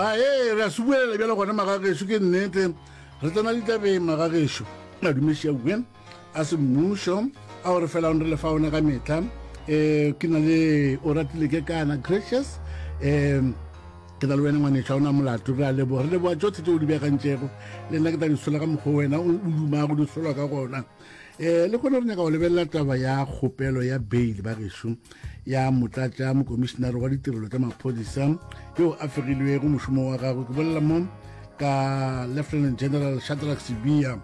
a ee re a se buelela bjale gona magagešo ke nnete re tsena ditabeng magagešo madumeši a buen a semmušo a o re felang re lefa one ka metlha um ke na le o ratile ke kana gracious um ke na le wena ngwanetšha o na molato re a leboga re leboga tsotlhe tse o di beakantšego le nna ke tla di sola ka mokgwa wena o dumago di solwa ka gona eh le kgone re nyaka go lebelela taba ya kgopelo ya bail ba gešo ya motlatša mokomišenare wa ditirelo tša maphodisa yo a fegilwego mošomo wa gagwe ke bolela mo ka lieutenant general shadrack sibia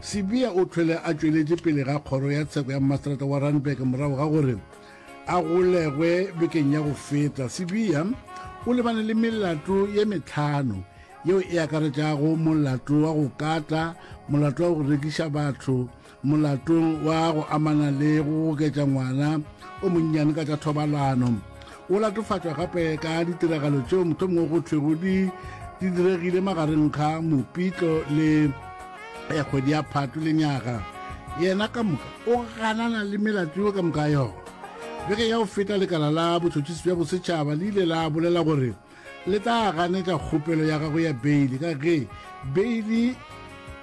sibia o tlhwele a tšweletše pele ga kgoro ya tsheko ya mmaserata wa randburg morago ga gore a golegwe bekeng ya go feta sibia o lebane le melato ye metlhano yeo e akaretšago molato wa go kata, molato wa go rekiša batho, molato wa go amana le go goketša ngwana o monnyane ka tša thobalano. O latofatšwa gape ka ditiragalo tšeo mohlomongwe go thwego di di diregile magareng ga mopitlo le ya kgwedi ya phato le nyaga yena ka moka o ganana le melato yo ka moka yona beke ya go feta lekala la botšhotšhisi bja bosetšhaba le ile la bolela gore le tla ganetša kgopelo ya gago ya beili ka ge beili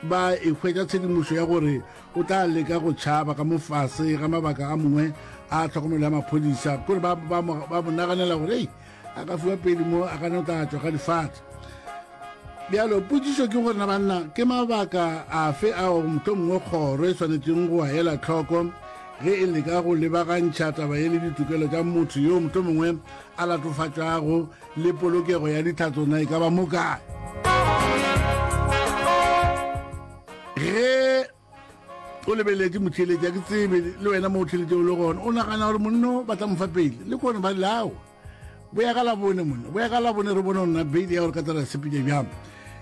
ba e hwetša tshedimošo ya gore o tla leka go tšhaba ka mofase ga mabaka a mongwe a tlhokomelo ya maphodisa kore ba mo naganela gore ei a ka fiwa pele mo a gane o tla tswa ga difatshe bjalo potsiso ke gore na banna ke mabaka afe ao motlho mongwe kgoro e tshwanetseng go a ela tlhoko ge e leka go lebagantšha taba e le ditokelo tša motho yo motlho mongwe a latofatšwago le polokego ya ditlhatso na e ka ba mokae ge o lebeletse motheletsi a ke tsebe le wena mo o theletše o le gona o nagana gore monno ba tla mofa pele le kone ba lelago boya ka labone monna boya ka labone re bone gona beile ya gore ka tsela sepile bjang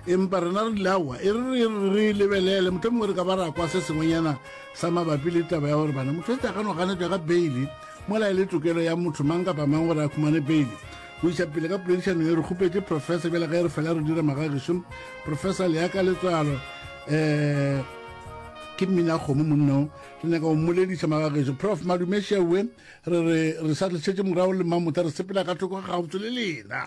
empa rena re dilaowa e re re lebelele motlho mongwe re ka ba ra kwa se sengwenyana sa mabapi le taba ya gore bana motho etse a ka no ganetšwa ka beile mola e le tokelo ya motho mang kapa mang gore a khumane beile go iša pele ka poledišano e re kgopetse professor bjale ga e re fela re dira magagišo professor leaka letswalo um ke mmina kgomo monnao re nyaka go mmolediša magagišo prof madumešewe re re re sa re šetse morago le mamota re sepela ka thoko ga gabotse le lena